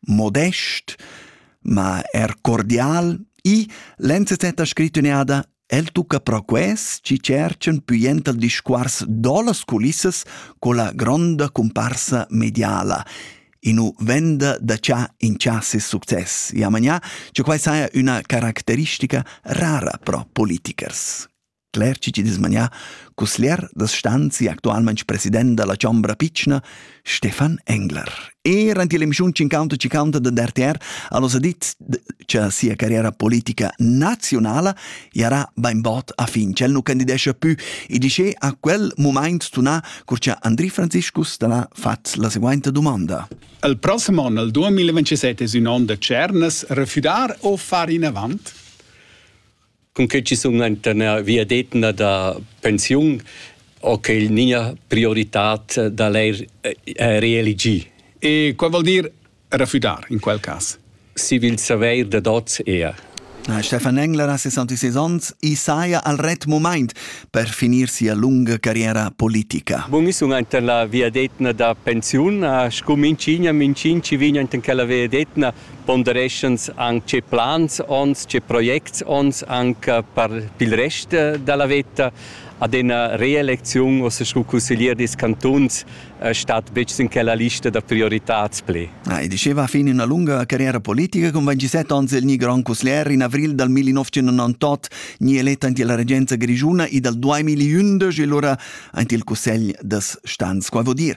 modest, ma er cordial. I l'enzet ha scrit ün'eada El tucca pro quest chi cerchan püient al discuors do las culissas con la gronda comparsa mediala inu venda da cha in cha ses success. Ja manià, che quai saja üna caracteristica rara pro politikers. Cler chi chi'd es manià cusglier da stanzi actualmaing president da la Chombra pitschna, Stefan Engler. Eir ant il emischiun Cinquanta Cinquanta da RTR ha nos dit cha sia carriera politica nazionala jarà bainbod a fin, ch'el nu candidescha pü e dischè a quel mumaint tunà cur cha Andri Franziscus talà fat la seguainta dumonda. Il prossem on, il 2027, es ün on da tschernas, refüdar o far inavant? cun che ci sun enta ina viadetna da pensiun ho que il nia prioritad da l'eir eh, reeligir. E quai vuol dir refudar in quel cas? Si vil saveir da dots ea. Stefan Engler ha 66 ans e saja al ret moment per finir sia lunga carriera politica. Bun, sun enta la viadetna da pensiun, a scum in cigna, min cin ci vigna enten quella viadetna pondereschans anc tge plans onns, tge projects onns anc per il rest da la veta. Ad ina reelecziun ossa sco cusseglier dils cantuns stat betg sin quella lista da prioritads pli. Ah, e diceva fin ina lunga carriera politica con 27 ans il ni grand cusseglier in avril dal 1998 ni eletta ante la regenza grigiuna e dal 2011 e lura ante il cussegl das stans. Qua vuol dir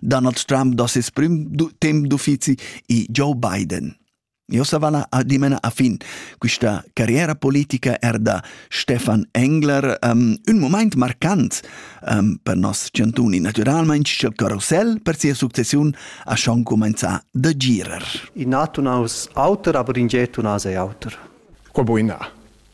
Donald Trump do ses prim temp d'uffizi e Joe Biden. Io savala a dimena a fin questa carriera politica er da Stefan Engler um, un moment marcant um, per nos ciantuni, naturalmente il carousel per sia successione a schon comenza da girer. I nato naus auter, aber in geto nase auter. Quo boina?